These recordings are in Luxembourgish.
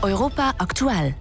Europa aktuell.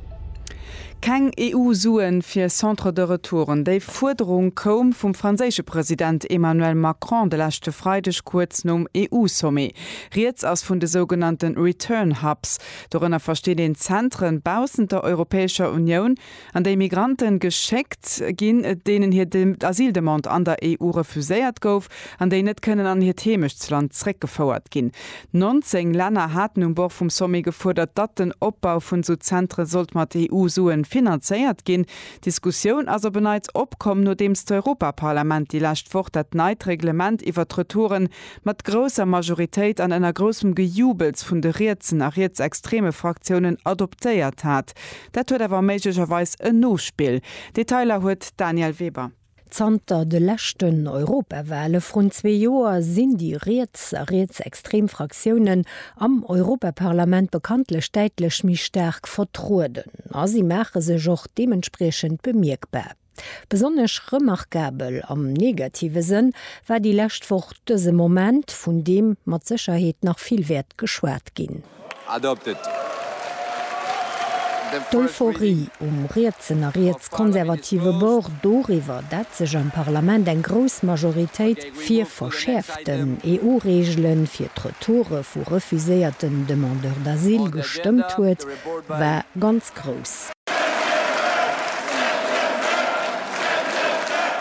Keng EU-Suen fir Centre de Retouren, déi Fuerderung koum vum franséische President Emmanuel Macron de leschte Freideg kuerz nom EU-Sommet. Rieds ass vun de sougenannte Return Hubs. Dorënner versteet een Zentren baussent der Europäescher Unioun, An déi Migranten geschéckt ginn, deenen hir Asyldemande an der EU refuséiert gouf an déi net kënnen an hiert Heemechtsland zréckgefouert ginn. 19 Länner haten um Bord vum Sommet gefuerdert, datt den Opbau vun esou Zentre sollt mat EU-Sue finanzéiert ginn. D'Diskussioun ass op en Neits opkomm, nodeems d'Europaparlament déi lescht Woch dat neit Reglement iwwert d'Retouren mat grousser Majoritéit an ënner groussem Gejubels vun de rietsen a rietsextreme Fraktiounen adoptéiert hat. Dat huet awer méiglecherweis en Nospill. Detailer huet d'Danièle Weber. Zanter de leschten Europawahle vrun zwee Joer sinn déi riets a rietsextrem Fraktiounen am Europaparlament bekanntlech däitlech méi staark vertrueden a si maache sech och deementspriechend bemierkbar. Besonnesch remarkabel, am negative Sënn, war déi lescht Woch dëse Moment, vun deem mat Sécherheet nach vill wäert geschwat ginn. D'Euphorie um rietsen a rietskonservative Bord doriwwer, dat sech am Parlament eng grouss Majoritéit fir verschäerften EU-Reegele fir d'Retoure vu refuséierten Demandeurs d'asile gestëmmt huet, war ganz Musek grouss.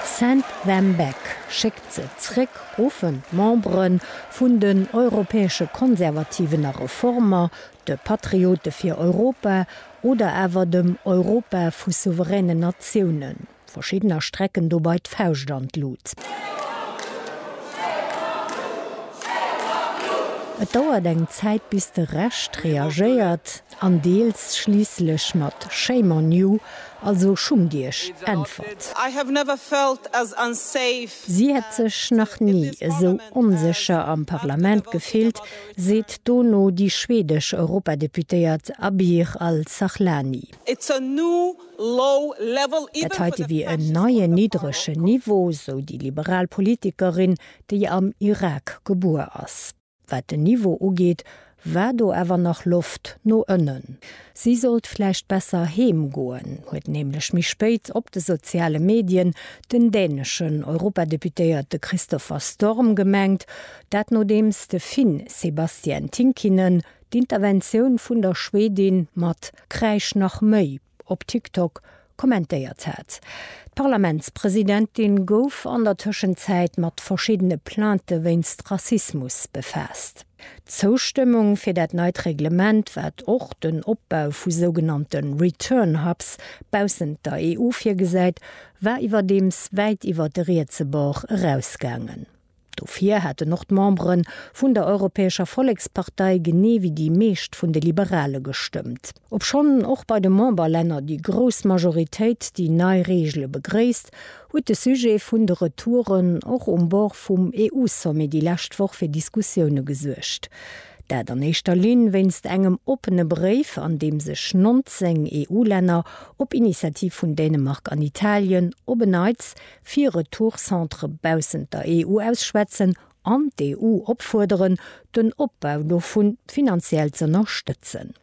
Send them back, schéckt se zréck, ruffen d'Membere vun den europäesche Konservativen a Reformer, de Patriote fir Europa oder awer dem Europa vu souveränen Natiounen. Verschiddener strecken dobei d'Fauscht an d'Lut. Et dauert eng Zäit bis de Rescht reagéiert an deels schliisslech mat Shame on you, also schummt iech, äntwert. Si hätt sech nach ni esou onsécher am Parlament gefillt, seet dono déi schwedesch Europadeputéiert Abir Al-Sahlani. Dat heite wier en neien niddregen Niveau, sou déi liberal Politikerin, déi am Irak gebuer ass. Wat den Niveau ugeet, war do awer nach Loft no ënnen. Si sollt vläicht besser heem goen, huet nämlech méi spéit op de soziale Medien den däneschen Europadeputéierte Christopher Storm gemengt. Dat nodeems de Finn Sebastian Tynkkynen d'Interventioun vun der Schwedin mat Kräisch nach méi op TikTok kommentéiert hat. D'Parlamentspresidentin gouf an der Tëschenzäit mat verschiddene Plainte wéinst Rassismus befaasst. D'Zoustëmmung fir dat neit Reglement, wat och den Opbau vu sougenannte Return Hubs baussent der EU virgesäit, war iwwerdeems wäit iwwer de rietse Bord erausgaangen. Dofir hätten och d'Membere vun der Europäescher Vollekspartei, genee wéi déi meescht vun de Liberale gestëmmt. Obschonn och bei de Memberlänner déi grouss Majoritéit déi nei Reegele begréisst, huet de Sujet vun de Retouren och um Bord vum EU-Sommet déi lescht Woch fir Diskussioune gesuergt. Dat an éischter Linn wéinst engem oppene Bréif, an deem sech 19 EU-Länner, op Initiativ vun Dänemark an Italien, op en Neits fir Retourcentre baussent der EU ausschwätzen an d'EU opfuerderen, den Opbau dovu finanziell z'ënnerstëtzen.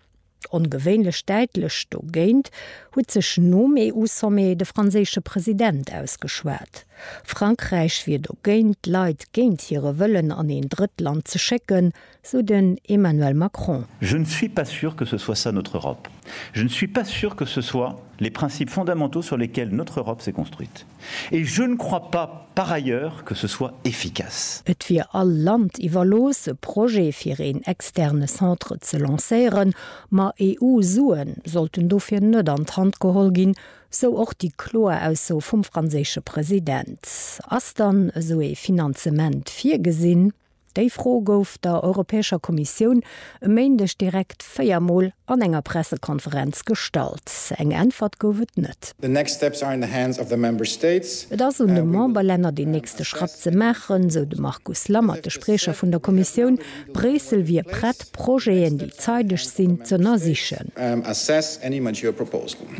Ongewéinlech däitlech dogéint huet sech nom EU-Sommet de franséische President ausgeschwat. Frankräich wier dogéint, d'Leit géint hire Wëllen an een Drëttland ze schécken, sou den Emmanuel Macron. Je ne suis pas sûr que ce soit ça notre Europe. Je ne suis pas sûr que ce soit les principes fondamentaux sur lesquels notre Europe s'est construite. Et je ne crois pas, par ailleurs, que ce soit efficace. Et wier all Land iwwerlooss, e Projet fir een externe Centre ze lancéieren, ma EU-Sue sollten dofir net an d'Hand geholl ginn, sou och déi kloer Ausso vum franséische President. Ass dann esou ee Finanzement virgesinn? Déi Fro gouf der Europäescher Kommissioun e Méindeg direkt véier Mol an enger Pressekonferenz gestallt. Eng Äntwert gouf et net. Et ass un de Memberlänner deen nächste Schratt ze maachen, sou de Markus Lammert, de Spriecher vun der Kommissioun. Bréissel wier prett, Projeten, déi zeideg sinn, z'ënnersichen.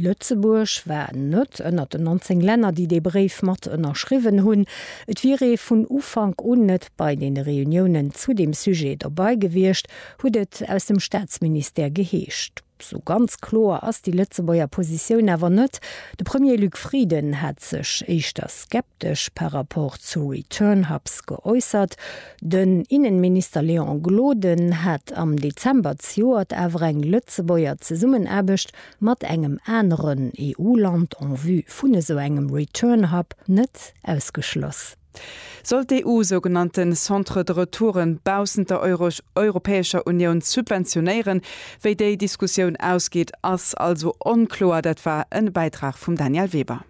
Lëtzebuerg war net ënnert den 19 Länner, déi dee Bréif mat ënnerschriwwen hunn. Et wier ee vun Ufank un net bei deene Reuniounen zu deem Sujet dobei gewiescht, huet et aus dem Staatsministère geheescht. Sou ganz kloer ass déi Lëtzebuerger Positioun awer net. De Premier Luc Frieden hat sech éischter skeptesch par rapport zu Return Hubs geäussert. Den Innenminister Léon Gloden hat am Dezember zejoert awer eng Lëtzebuerger Zesummenaarbecht mat engem aneren EU-Land en vue vun esou engem Return Hub net ausgeschloss. Sollt d'EU sougenannte Centres de retouren baussent der Europäescher Unioun subventionéieren? Wéi déi Diskussioun ausgeet, ass also onkloer. Dat war e Bäitrag vum Daniel Weber.